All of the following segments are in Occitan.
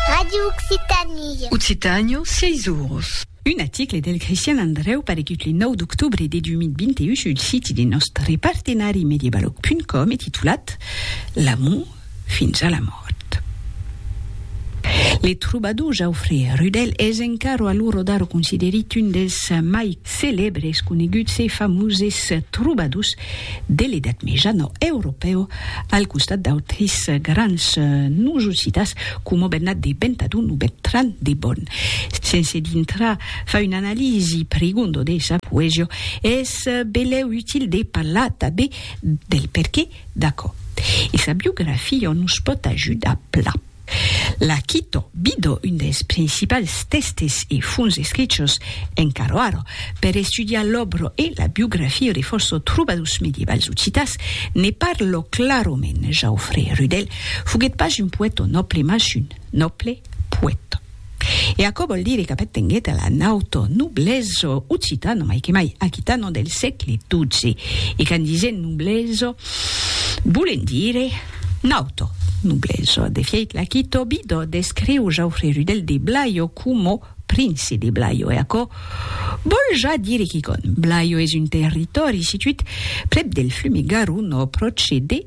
Radio Occitanie. Occitània, sièis oros. Un aticle del Crestian Andrèu paregut le 9 d'octobre de 2021 sul siti de nòstre partenari Mediabalòg.com e titulat L'amor fins a la mòrt. Le trobador Jaufré Rudel es encara a l'ora d'ara considerit un dels mai celèbres, coneguts e famoses trobadors de l'Edat Mejana europèu al costat d'autris grans noms ocitans coma Bernat de Bentadon o Bertran de Bòn. Sense dintrar far una analisi prigonda de sa poesia, es belèu util de parlar tanben del perqué d'aquò. E sa biografia nos pòt ajudar plan. La Quito Bido, un dels principals tèstes e fonts escrichos en Caroaro per estudiar l'òbra e la biografia de fòrça trobadors medievals occitans, ne parla clarament, Jaufré Rudèl foguèt pas un poèta nòble mas un nòble poèta. E aquò vòl dire qu'Apet tenguèt la nautor noblesa occitana, mai que mai aquitana, del sègle xii, e qu'en disent noblesa volent dire nautor noblesa. De fièit, l'Aquitò Bidò descriu Jaufre Rudel de Blayo coma prince de Blayo, e aquò vòl ja dire quicòm. Blayo es un territòri situit prèp del flume Garonne, pròche de.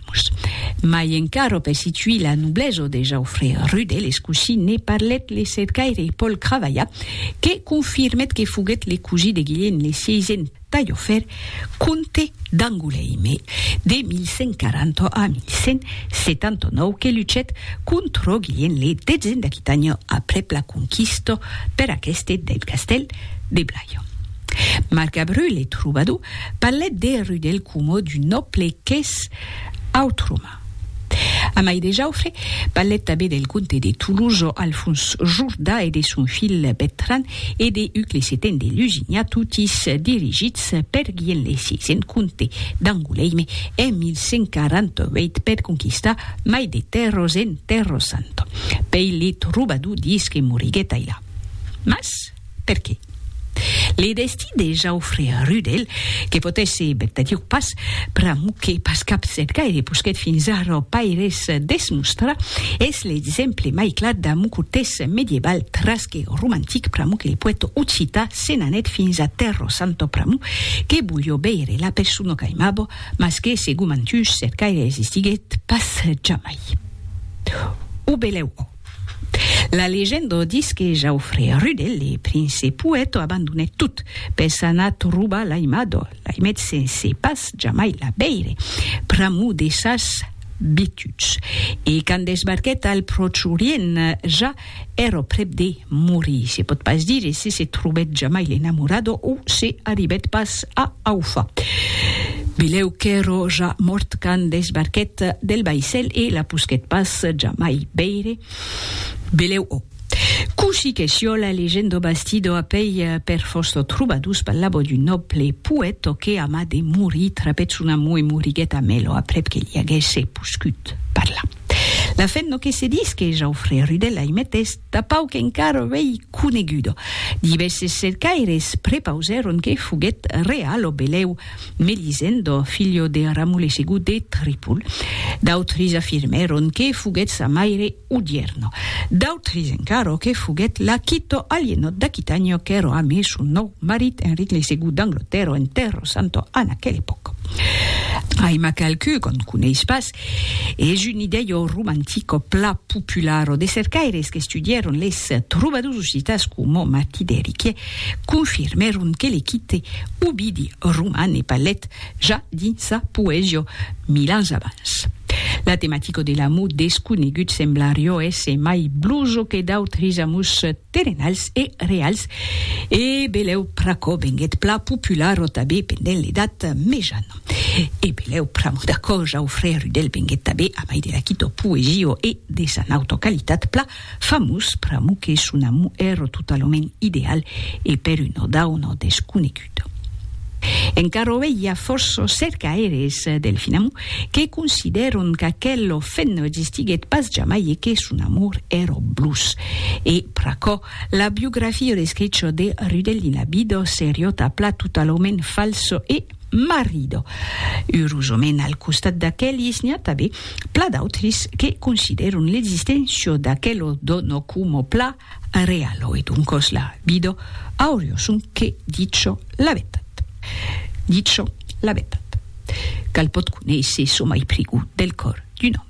Erasmus. Mai encara per situir la noblesa de Jauffre Rudel es cosí ne parlèt le cercaire Paul Cravallat que confirmèt que foguèt le cosí de Guilhène le Sieisen Taillofèr, comte d'Angoulême de 1140 a 1179 que luchèt contra Guilhène le Detzen d'Aquitània aprèp la conquista per aqueste del castèl de Blaye. Marc Abreu, le trobador, parlèt de Rudel coma d'un nòble qu'es autroma. Amai de Jaufre parlèt tanben del comte de Tolosa Alfons Jordà e de son filh Bertran e de Huc le Seten de Lusignan, totis dirigits per Guillem le Sisen, comte d'Angoulême, en 1148 per conquistar mai de tèrras en Terra Santa. Pei le trobador dís que moriguèt ailà. Mas. Perqué? Le destí de Jaufre Rudel, que potèsse vertadiu pas, pr'amor que pas cap set gaire posquèt fins ara ò paires desmostrar, es l'exemple mai clar d'amor cortès medieval tras que romantic pr'amor que le poèta occità se n'anèt fins a Tèrra Santa pr'amor que volió veire la persona qu'aimava mas que segon Mantuch set gaire existiguèt pas jamai. O belèu ò. La legenda o dis que Jaufré Rude, le prince poèto, abandonèt tot, per s'anar trobar l'aimador, l'aimet sense pas jamai la veire, pr'amor de sas bituds. E quand desbarquèt al Pròche Orient, ja èra prèp de morir. Se pòt pas dire se se trobèt jamai l'enamorador o se arribèt pas A Aufa. Bilhèu qu'èro ja mòrt quand desbarquèt del vaissèl e la posquèt pas jamai veire. Bilhèu o. Cossí que siòla legendo bastido a pei per Fausto Trubadus parlavo d'un nòble poèto que a mas de morir trapèt son amor e moriguèt a Mèlo aprèp que li aguèsse poscut parlar. La fin no que se disque Jaufrè Rudèl aimet es, dapau qu'encara vei coneguda. Divèses cercaires prepausèron que foguèt real lo belèu Melisendo, filho de Ramulesegú de Tripol. D'autres afirmèron que foguèt sa maire Udierno. D'autres encara que foguèt Laquito, Alienò d'Aquitània, qu'èra amé son nòu marit Enric Lesegú d'Anglotèrra en Tèrra Santa en aquela epòca. Ai-ma qualqu'un qu'on coneis pas, Es un idèio romantico pla popularo de cercaires qu'estudièron les trobadors occitans coma Martí d'Eriquie confirmèron que le quite Ovidi roman e palet ja dins sa poesia mil ans abans. La tematica de l'amor desconegut semblarió èsser mai bloso que d'autres amors terrenals e reals e belèu pr'aquò venguèt pla popularo tanben pendent l'Edat Mejana. E belèu pr'amo d'a còja au frère Rudel venguèt tabé a mai de la quito poesio e de sa nauta qualitat pla famós pr'amo que son amo ero totalament ideal e per un ò dau nò desconegut. Encara ovei i a fòrços cercaires del fin amo que considèron qu'aquelo fen no existiguèt pas jamai e que son amor ero Blues. E pr'aquò la biografio de Scricho de Rudel dins la Bido seriota pla totalament falso e. marido. Urosament al costat d'aquelis n'i a tabé pla d'autris que consideron l'existencia d'aquelo dono coma pla realo e doncos la vida aurio son que dicho la vetat. Dicho la vetat. Cal pot conéisser çò mai prigut del còr d'un òme.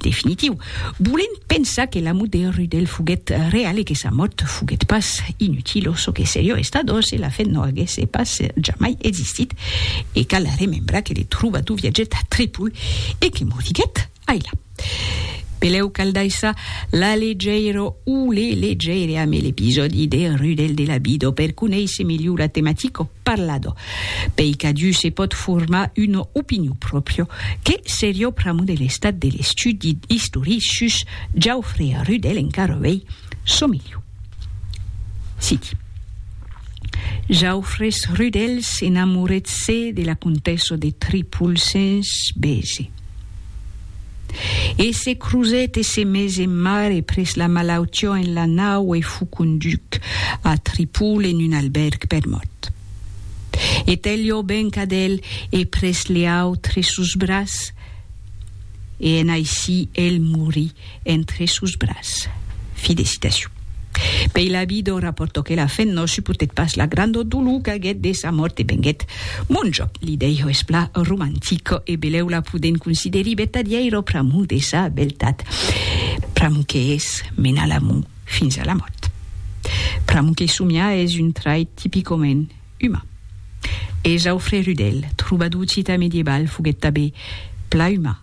Definitiu. Volent pensar que l'amo de Rudel foguèt real e que sa mòrt foguèt pas inutil o çò que serió estat o se la fe no aguèsse pas jamai existit e cal remembrar que le trobadour viatgèt a Tripol e que moriguèt ailà. Pelèu cal daissar la legèira o le legèire amé l'episòdi de Rudel de la Bido per conéisser melhor la tematica. parlado, pei qu'adiu se pòt formar una opinion pròpria, que seriá pr'amor de l'estat de l'estudi istoric sus Jaufre a Rudel encara uei, çò miliu. Citi. Jaufres Rudel s'enamorèt se de la comtessa de Tripol sens bese. E se crusèt e se mes en mare pres la malautió en la nau e fut conduch a Tripol en un albèrg per mòrt. E Tèlio venc ad el e pres leaut tre sos bras, e en aicí el morí. entre sos bras. Fi de citacion. Pei l'avi d'o raportoque la fen no suportèt pas la grandor dolor qu'aguèt de sa mòrt e venguèt monjo. L'idèiho es pla romantic e belèu la podèn considerir vertadièiro pr'amor de sa beltat, pr'amor que es menar l'amor fins a la mòrt. Pr'amor que somiar es un trait tipicament uman. E Jaufrè Rudèl, trobador occità medieval, foguèt tabé pla uman.